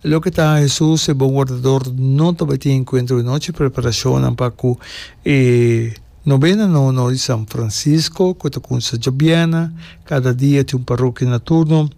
Loke ta Hesus e bon wardador no tabatin enkuentro di nochi preparashonnan pa ku e Nobena Nono di San Francisco, ku ta kumsa djobièrnè, kada dia tin un parokia na turno,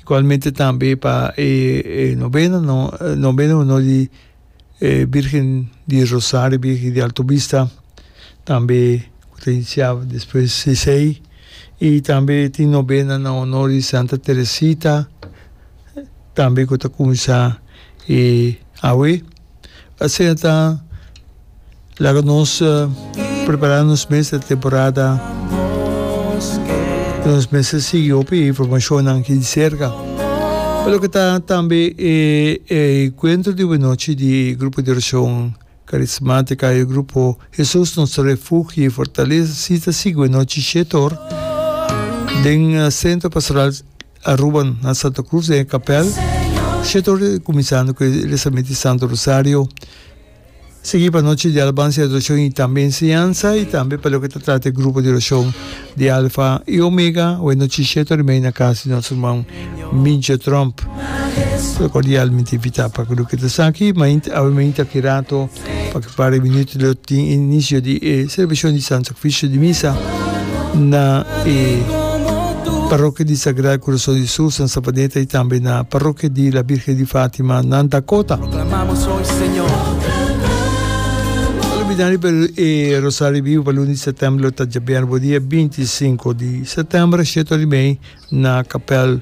igualmente tambe pa e Nobena Nono di e Birgen di Rosario, e Birgen di Alto Bista, tambe cu ta inicia despues di esey, y tambe tin nobena na honor di Santa Teresita, tambe cu ta cuminsa awe, asina ta Laga nos prepará nos mes ta temporada i nos mes ta sigui hopi e informashonnan aki di serka. Pa loke ta tambe e enkuentro di obonochi di e grupo di orashon karismátika, e grupo Hesus nos refugio i fortalesa si ta sigui obonochi shete or den Sentro Pastoral Aruba na Santa Cruz den e kapèl, shete or kuminsando ku e rezamento di Santo Rosario. Sigui pa nochi di Alabansa i Adorashon i tambe Enseñansa, i tambe pa loke ta trata e grupo di orashon di Alfa i Omega, awe nochi shete ora i media na kas di nos ruman Mincho Tromp. Lo kordialmente invitá pa ke loke ta sa aki, mainta awe mainta ki rato, pa ke par di minuto lo tin e inisio di e selebrashon di Santo Oficio di Misa na e Parokia di Sagrado Corazon di Jesús na Sabaneta y tambe na Parokia di la Virgen di Fátima na Dakota. Olbidandi pa e Rosario Vivo pa luna di September lo ta djabièrnè bo dia binti i sinku di September, shetorimei na kapèl.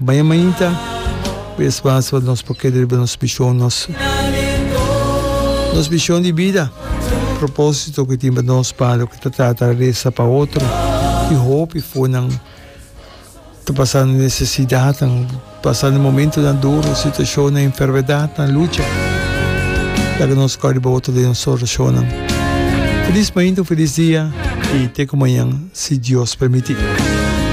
Baña mainta ku e spas pa nos por keda riba nos bishon, nos nos bishon di bida, propósito ku e tin pa nos pa lo ke ta trata resa pa otro i hopi fonan ta pasando nesesidatnan, pasando momentunan duru, situashonnan, enfermedatnan, lucha. Laga nos kau riba otro den nos orashonnan. Felis mainta, un felis dia i te ku mañan si Dios permití.